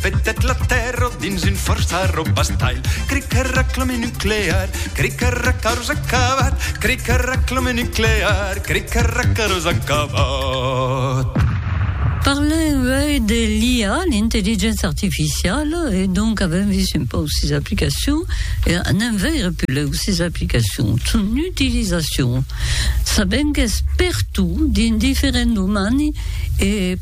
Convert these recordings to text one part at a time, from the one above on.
Petèt la Tèrra dins un fòrç arrobastalh, crei que reclame nuclear, crei que recaros acabat, crei que reclame nuclear, crei que recaros acabat. Parlem uèi de l'IA, l'intelligéncia artificiala, e donc avèm vist un pauc sis aplicacions, e anem veire pulèu sis aplicacions, son utilizacion. Sabèm qu'es pertot dins diferents domani e.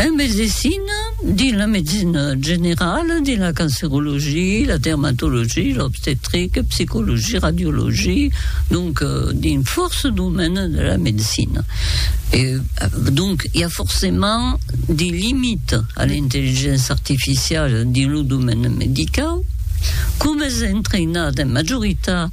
En medecina, dins la medecina generala, dins la cancerologia, la dermatologia, l'obstetrica, psicologia, radiologia, donc dins fòrça domènes de la medecina. E, donc, i a forcèment de limitas a l'intelligença artificiala dins lo domène medicau. Coma es entraïnat en majoritat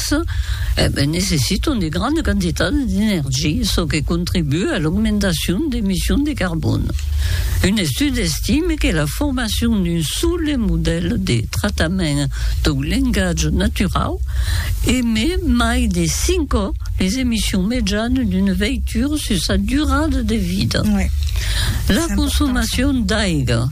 Aquests necessitan de grandes quantitats d'energia, çò que contribua a l'augmentacion d'emissions de carbòn. Un estudi estime que la formacion d'un sòle modèl de tractament dau lengatge naturau emet mai de 5 còps les emissions mejanes d'una veitura sus sa durada de vida. La consomacion d'aiga.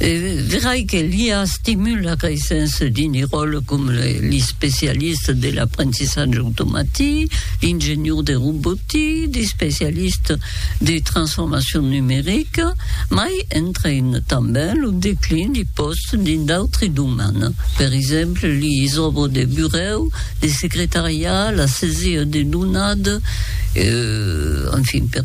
Verai que l'IA estimula qu'ei sens dini ròle com l'especialista de l'aprentissatge automatic, l'ingenior de robotic, l'especialista de transformacion numerica, mai entraina tanben lo declin de pòstes dins d'autri domènes, per exemple, les òbres de burèu, de secretariat, la sesir de donades, enfin, per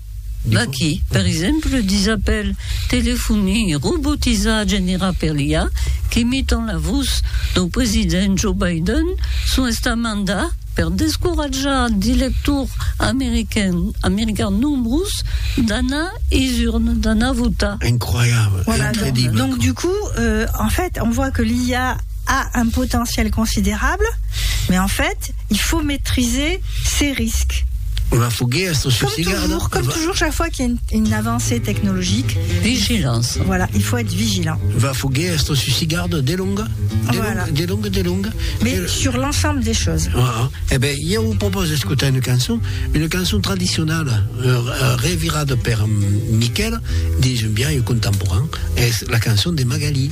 Vaqui, per exemple, disapèl telefoni robotizat generat per l'IA qu'imitan la vos dau president Joe Biden son estamenta per descoratjar de lectors americans nombrus d'anar es urnes, d'anar votar. Incroyable, incredible. Donc du coup, en fait, on voit que l'IA a un potentiel considerable, mais en fait, Il faut maitriser ses risques. Ua foguèa sus ua cigada. Comme toujours, comme toujours chaque fois qu'il y a une, une avancée technologique. Vigilance. Voilà, il faut être vigilant. Ua foguèa sus ua cigada delonga, delonga, voilà. delonga, delonga. Mais del... sur l'ensemble des choses. Ah, eh ben, jo vous propose d'escutar une cançon, une cançon traditionnelle, euh, revirada per Miquel, disons bien, et contemporain, es la cançon de Magali.